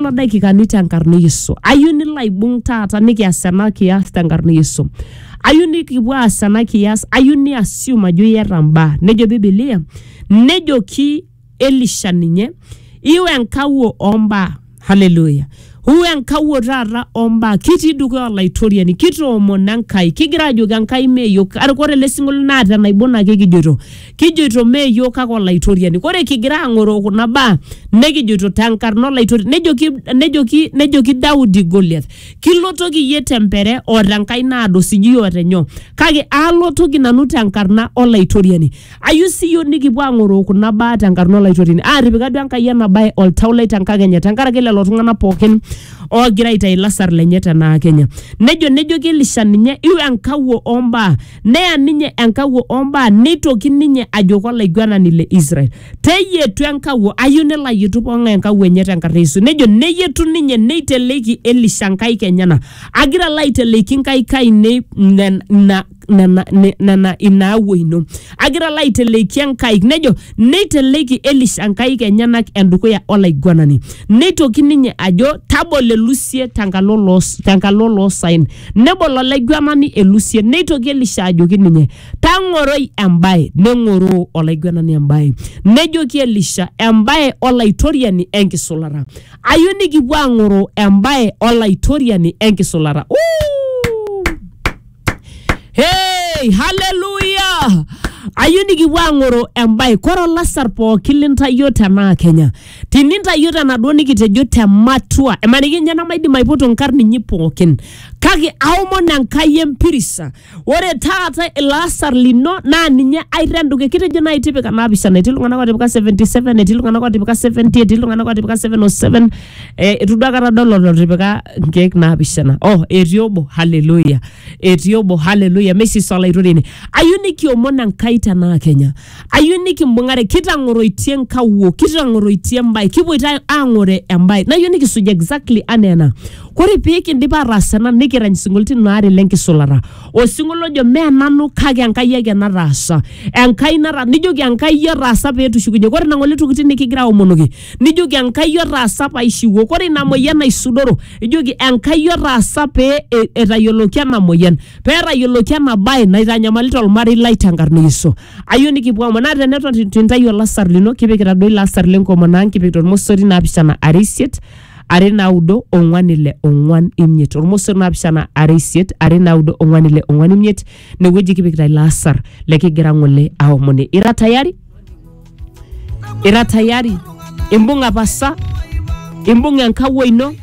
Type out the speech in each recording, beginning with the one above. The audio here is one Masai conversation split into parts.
Kuna daikikani tenkarna e Yesu. Ayieu nilo aibung taata nikias ena kias tenkarna e Yesu. Ayieu nikipuo aas ena kias, ayieu ni assume ajo iyata mbaa. Nejo Biblia, nejoki Elisha ninye, iu enkawuo ombaa. Hallelujah. Huu enkawuo taata ombaa kitii dukuya olaitoriani kitoomono Enkai kigira ajoki Enkai mee yiok Kake ore ele sinkolio naa tenaibon ake kijoito kijoito mee iyiook kake olaitoriani kore kigira ang'oroo kuna baa nekijoito tenkarna olaitoriani nejoki, nejoki, nejoki daudi goliath kilotoki iyie tempere o tenkai naado sijui o tenyoo kake alotoki nanu tenkarna olaitoriani ayieu siiyio nikipuo ang'oroo kuna baa tenkarna olaitoriani aatipika duo enkai ena bae oltau lai tenkakenya tenkaraki lelo tung'anak pookin oogira aitayu ilasar lenye tenaa kenya nejo nejoki elisha ninye iu enkawuo ombaa neya ninye enkawuo ombaa neitoki ninye ajoki olaiguanani le Israel teyietu enkawuo ayieu nelo ayietu pong'ae enkawuo enye tenkarna e Yesu nejo neyietu ninye neiteleiki Elisha nkaik enyena agira alo aiteleiki nkaik ainei nen- ina nena ne- nena ina awuo ino agira alo aiteleiki enkaik nejo neiteleiki Elisha nkaik enyenak endukuya olaiguanani neitoki ninye ajo tabolo elusie tenkalo loo tenkalo loosaen Nebol olaiguanani elusien, neitoki Elisha ajoki ninye, Tang'oroi embae. Neng'oroo olaiguanani embae. Nejoki Elisha, Embae Olaitoriani enkisulata. Ayeu nikipuo aang'oroo embae Olaitoriani enkisulata. Uu! Hey, haleluya! Ayeu nikipuo aang'oroo embae. Kore olasar pooki lintayio tenaa Kenya, tinintayio tenaduo nikitejo te matua emaniki ninye namaidim aipoto nkarn inyi pookin kake aomon enkai empirisa ore taata ilo asar lino naa ninye airren dukuya kitejo naaji tipika naapishana etii iltung'anak otipika 77 etii iltung'anak otipika 70 etii iltung'anak otipika 707 eh, itu duo akata adol olotipika inkeek naapishana oh etii obo haleluya etii obo haleluya meisisa olaitoriani ayieu nikiomon enkai tenaa kenya ayieu nikimbung'are kitang'oroitie nkawuo kitang'oroitie embae kipuoito ang'ore embae nayieu nikisuj exactly anaa ena kore pee kindip ataas ena nikirany sinkolioitin aare lenkisulata osinkolio ojo mee nanu kake enkai ake nataasa enkai nata nijoki enkai otaasa petushukunye kore nang'ole tokitin nikigira aomonoki nijoki Enkai otaasa paishiwuo. Kore ina moyian naisudoro, ijoki Enkai otaasa pee e- etayioloki ena moyian, pee etayioloki ena bae naitanyamalita olmarei lai tenkarna e Yesu. Ayeu nikipuo aomon naa teneton itu intayu olasar lino kipikita duo ilo asar lenkomono ang' kipikita olmosori naapishana are isiet are naudo ong'wan ile ong'wan imiet. Olmosori naapishana are isiet are naudo ong'wan ile ong'wan imiet inewueji kipikita ilo asar lekigira ng'ole aomoni. Ira tayari? ira tayari imbung'a pasa imbung'a enkawuo ino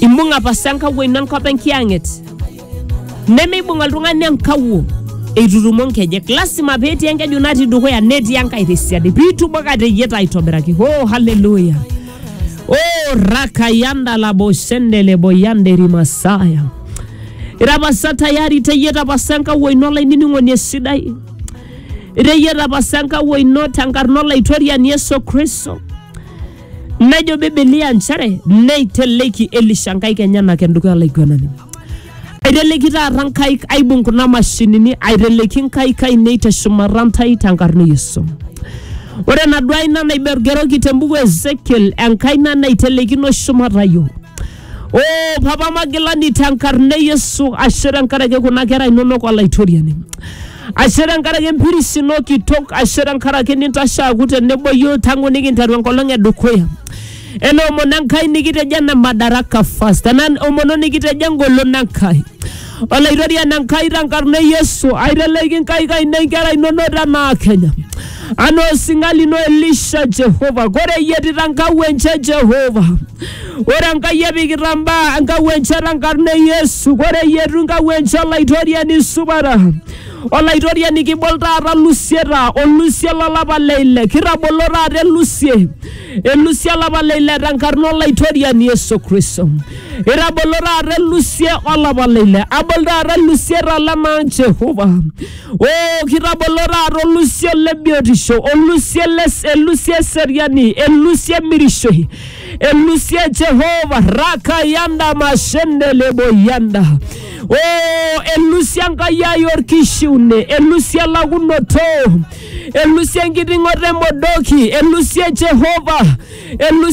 imbung'a pasa enkawuo ino enkop enkiyang'et nemeibung oltung'ani enkawuo eitutumo nkejek lasima petii enkeju natii dukuya netii enkae tesiadi piitumo kateyieta aitobiraki oh haleluya oh rakayanda laboshende boyande rimasaya irapasa tayari teyieta pasa enkawuo ino olainining'oni esidai Iteyieta apa sa enkawuo ino tenkarna Olaitoriani Yesu Kristo. Nejo Biblia nchere neiteleki Elisha nkaik enyenak endukuya olaiguanani. Aiteleki taata nkaik aibung kuna mashinini, aiteleki nkaik ainei teshumata ntae tenkarna e Yesu. Ore enaduo aina naigergeroki tembuku e Ezekiel, enkaina naitelekino shumata yiok. Oh, papa magilani tenkarna e Yesu, ashe tenkaraki kuna kera inonok olaitoriani. Ashe tenkaraki empiris ino kitok, ashe tenkaraki nintashe aaku tenebo yiok tangu nikinteru enkolong e dukuya. Ena omono Enkai nikitejo ena madaraka first, ena omono nikitejo engolon Enkai. Olaitoriani Enkai tenkarna e Yesu, aiteleki inkaik ainei inkera inono tenaa Kenya. Anaa osinga lino Elisha Jehova, ore eyietita nkau enche Jehova. Ore Enkai epikita mbaa enkau enche tenkarna e Yesu, ore eyietu nkau enche Olaitoriani supata. Olaitoriani kibol taata lusieta, olusie lolapa le ile, kitabolo taata elusie. elusie olapa le ile tenkarna olaitoriani Yesu Kristo. Itabolo taata elusie olapa le ile, abol taata elusie talema Jehova. O kitabolo taata olusio le biotisho, olusie le elusie eseriani, elusie emirishoi, elusie Jehova raka yanda mashende lebo yanda. O elusie Enkai ai orkishiune, elusie elakunoto, elusie enkiting'oto emodoki elusie Jehova elusie